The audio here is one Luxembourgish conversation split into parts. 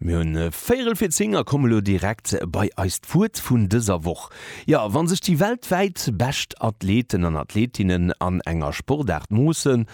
Mir hunn véierel fir 10 a komme lo direkt bei eist Wuert vun dëser Woch. Jo, wann sech déi weltwäit bescht Athleten an Athletinnen an enger Sportaart moossen,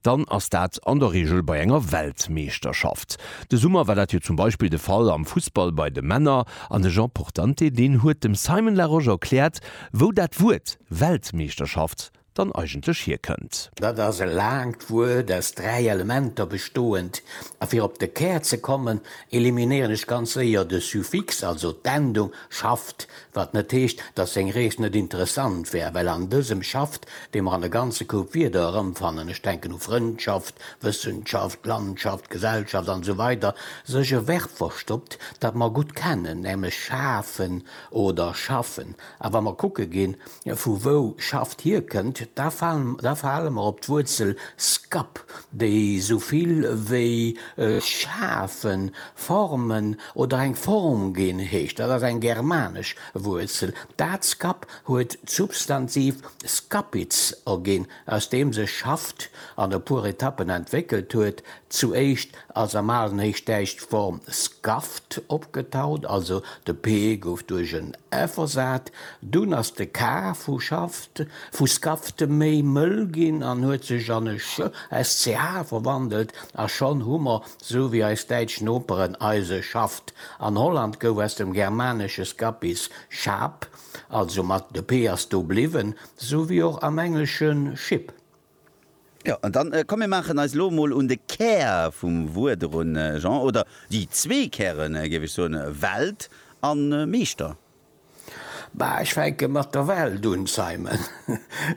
dann ass dat an der Reegel bei enger Weltmeeschterschaft. De Summer war dat jo zum Beispill de Fall am Fussball bei de Männer an de Jean Portante deen huet dem Simon Larosche erkläert, wou dat Wuert Weltmeeschterschaft dann eigentlech hierkënnt. Dat ass e laangt Wuert aus dräi Elementer bestoend, a fir op de Kär ze kommen, eliminéieren ech ganz séier de Suffix, also d'Endung, schafft, wat net heescht, datt seng Rees net interessant wär, well an dësem schafft, dee mer an e ganze Koup Wierder erëmfannen, ech denken u Frëndschaft, Wëssenschaft, Landschaft, Gesellschaft an esou weider, sech e Verb verstoppt, dat mer gutt kennen, nämlech schafen oder schaffen. A wa mer kucke ginn, vu wou Schaft hierkënnt, da falen, da fale mer op d'Wuerzel skap, déi esou vill wéi schafen, formen oder eng Form ginn heescht. Dat ass eng germanesch Wuerzel. Dat skap huet d'Substantiv skapitz erginn. aus deem sech Schaft an e puer Etappen entwéckelt huet. Zuéischt ass am alen Héichdäitsch d'Form Skaft opgetaucht, also de p gouf duerch en f ersat. Dunn ass de k vu Schaft, vu Skaft, méi mëll ginn an huet sech an e sch, sch verwandelt, a schonn hu mer, sou wéi eis däitsch Noperen, eise Schaft. An Holland gouf aus dem germanesche skapis, Schap, Also mat de p ass do bliwwen, sou wéi och am Engleschen ship. Jo, an dann, komm mir maachen eis elo emol un de Kär vum Wuert erun, Jean, oder déi zwee Kären, géif ech soen, Welt a Meeschter. Bah, ech fänke mat der Welt un, Simon.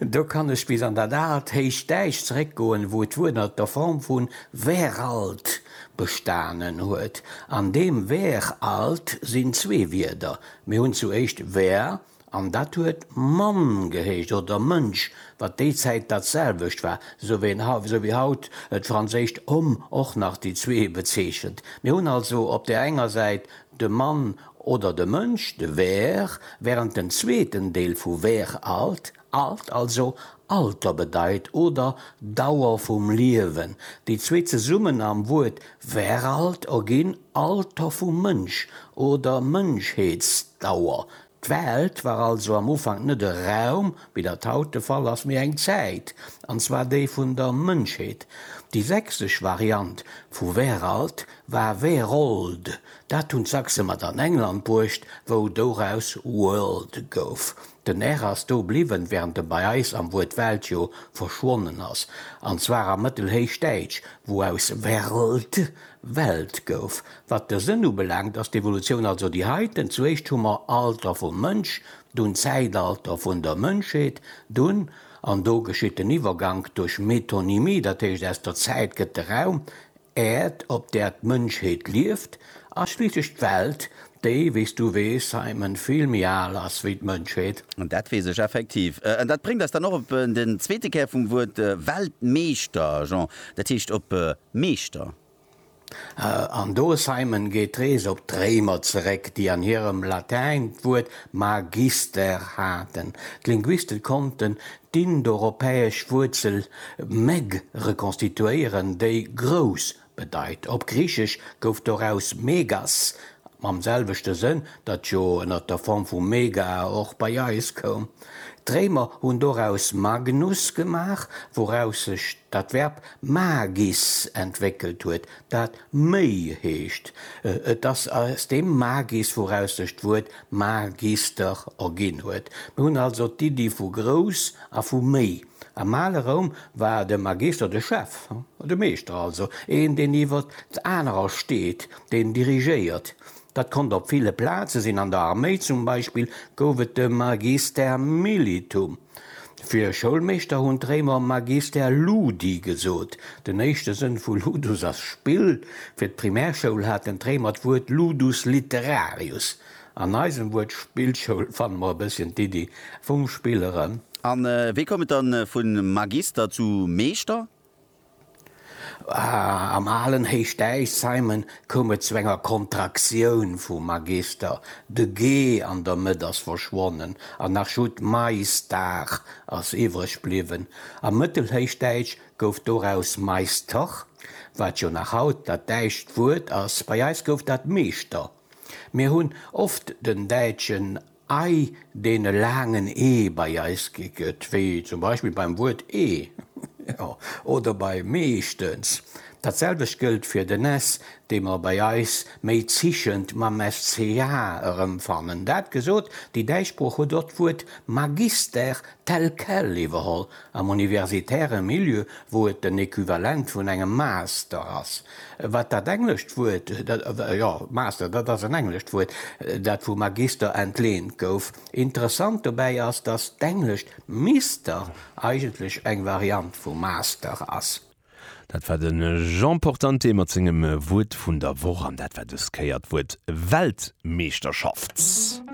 Do kann ech bis an dat aalt héicht Däich zeréckgoen, wou d'Wuert ënner der Form vu weralt bestanen huet. An deem weralt sinn zwee Wierder, Mir hunn zu éischt Wêr, an dat huet Mann gehéicht, oder Mënsch, wat déi Zäit dat selwecht war, sou wéi haut d'franséischt homme och nach déi zwee bezeechent. Mir hunn also op där enger Säit de Mann oder de Mënsch, de Wêr, wärend den zweeten Deel vu Wêr alt, Alt, also Alter bedeit oder Dauer vum Liewen. Déi zwee zesummen am Wuert Veralt erginn Alter vum Mënsch oder Mënschheetsdauer. D'Welt war also am Ufank net e Raum, wéi dat haut de Fall ass, mee eng Zäit, an zwar déi vun der Mënschheet. Déi sächsesch Variant vu Veralt war Werold, dat hunn d'Sachse mat an England bruecht, wou doraus World gouf. Den R ass do bliwwen, während e bei eis am Wuert Welt jo verschwonnen ass, an zwar am Mëttelhéichdäitsch, wou aus werld Welt gouf. Wat de Sënn ubelaangt, ass d'Evolutioun also déi heiten, Zuéischt hu mer Alter vum Mënsch, dunn Zäitalter vun der Mënschheet, dunn, an do geschitt den Iwwergank duerch Metonymie, dat heescht aus der Zäit gëtt de Raum, Äerd, op där d'Mënschheet lieft, ass schliisslech d'Welt, déi, wéi s du weess, Simon, vill méi al ass wéi d'Mënschheet. Dat weess ech effektiv. An dat bréngt eis dann och op den zweete Kär vum Wuert Weltmeeschter, Jean, dat heescht op Meeschter. An do, Simon, geet d'Rees op d'Réimer zeréck, déi an hirem Latäin d'Wuert magister haten. D'Linguiste konnten D'indoeuropäesch Wuerzel meg rekonstituéieren, déi grouss bedeit. Op Griichesch gouf doraus megas, mam selwechte Sënn, dat jo ënner der Form vu mega och bei eis koum. D'Réimer hunn doraus magnus gemaach, wouraus sech dat Verb magis entwéckelt huet, dat méi heescht. Et ass aus deem magis, wouraus sech d'Wuert Mar gees der o ginn huet. Mir hunn also d'Iddi vu grouss a vu méi. Am ale Roum war de Magister de Chef, de Meeschter also, een deen iwwer anerer steet, deen dirigéiert. Dat konnt op ville Plaze sinn, an der Arméi zum Beispill gouf et de Magister militum. Fir Schoulmeeschter hunn d'Réimer magister ludi gesot. Den éischte Sënn vu ludus ass Spill. Fir d'Primärschoul haten d'Réimer d'Wuert ludus literarius. An eisem Wuert Spillschoul fanne mer e bësschen d'Iddi vum Spill erëm. A wéi koum et dann vu magister zu meeschter? Am alen Héichdäich, Simon, koum et zu enger Kontraktioun vum Magister, de ge an der Mëtt ass verschwonnen an nach just d'Maistar ass iwwreg bliwwen. Am Mëttelhéichdäitsch gouf doraus Meister, wat jo nach haut dat däitscht Wuert ass. Bei eis gouf dat Meeschter. Mir hunn oft den däitschen Ei deene laangen e bei eis gi gëtt, wéi zum Beispill beim Wuert ee oder bei meeschtens. Dat selwecht gëllt fir den s, dee mer bei eis méi zischend mam sch erëmfannen. Dat gesot, déi däitsch Sprooch huet och d'Wuert Magister tel quel iwwerholl am universitäre Milieu, wou et den Equivalent vun engem Master ass. Wat dat englescht Wuert, jo, Master, dat ass en englescht Wuert, dat vu Magister entleent gouf. Interessant dobäi ass, datt d'englescht Mister eigentlech eng Variant vu Master ass. Dat war de Jean Portante mat sengem Wuert vun der Woch an dat war dës Kéier d'Wuert Weltmeeschterschaft.